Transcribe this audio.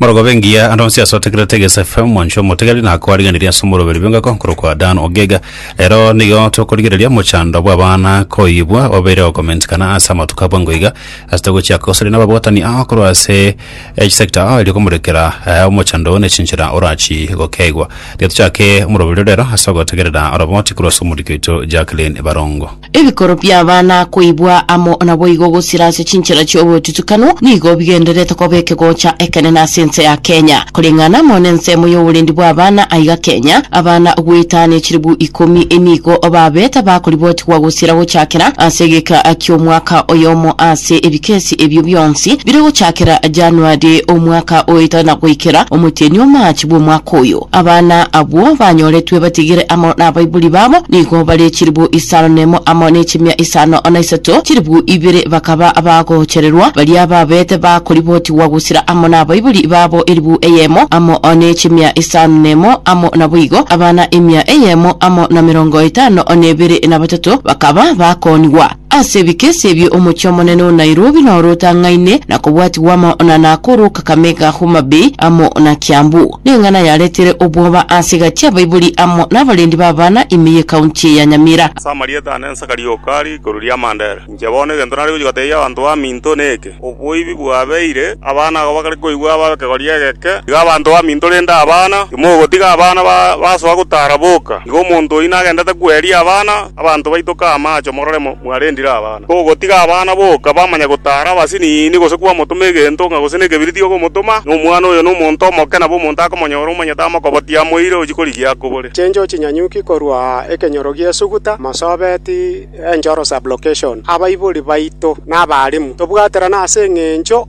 Morogobe engiya ande onsi ase otegerete Egesa FM mwancho omotegeri na kwariganiria ase omoroberi bw'engoko nkorokwa Dan Ogega. Rero nigo tokorigereria omochando bw'abana koyibwa obeire ogokomentikana ase amatuko abwo ango iga ase togochiaka gosaria nababwatani ao korwa ase each sector ao erio komorekera eh, omochando oo nechinchera orachi gokeigwa. Tiga tochake omoroberi rero ase ogotegerera oroboti korwa ase omoriki oito Jacqueline Barongo. Ebikoro bi'abana koibwa amo naboigo gosira ase chinchera chi'obotutukanu nigo bigendererete koba ekegocha ekenene ase ense ya Kenya. Koreng'ana amo nensemo y'oborendi bw'abana aiga Kenya, abana goetania chilibu ikomi nigo babete bakoribotigwa gosira gochakera ase egeka ki'omwaka oyomo ase ebikesi ebio bionsi bire gochakera Januari omwaka oito na goikera omotienyi o March bw'omwaka oyo. Abana abwo banyoretwe batigire amo nabaibori babo nigo bare chilibu isano nemo amo nechimia isano na isato, chilibu ibere bakaba abagochererwa, baria babete bakoribotigwa gosira amo nabaibori babo elibu eyemo amo nechimia isano nemo amo naboigo abana emia eyemo amo na merongo etano nebere nabatato bakaba bakoonigwa. Ase ebikesi ebio omochie omonene o Nairobi noro otang'aine na kobwatigwa amo na Nakuru, Kakamega, Homa Bay amo na Kiambu. Neng'ana yaretire obwoba ase egati y'abaibori amo nabarendi b'abana ime y'ekaunti eye ya Nyamira. Ase amarieta ane nsaka rioka rigikuru ri'amanda ere. Inche bono egento nare gochia gotebia abanto baminto neke, Oboibi bwabeire, abana agwo bakare koigwa abe ab'ekegori egeke. Iga abanto baminto rende abana, timogotiga abana basoa gotara boka. Iga omonto oyio nagendete kweria abana, abanto baitoke amache morore mwarendire abana. Togotiga abana boka bamanye gotara abasiniini gose kwamotoma egento ng'a gose nekebiriti okomotoma. Nomwana oyo nomonto omoke, nabo omonto akomonyora omonyete amokobotie amoire ochie korigia akobore. Chincho chinyanyuki korwa aa ekenyoro gi'esuguta, mosobeti. Enchoro Sublocation Abaibori baito na abaalimu, tobwaterane ase engencho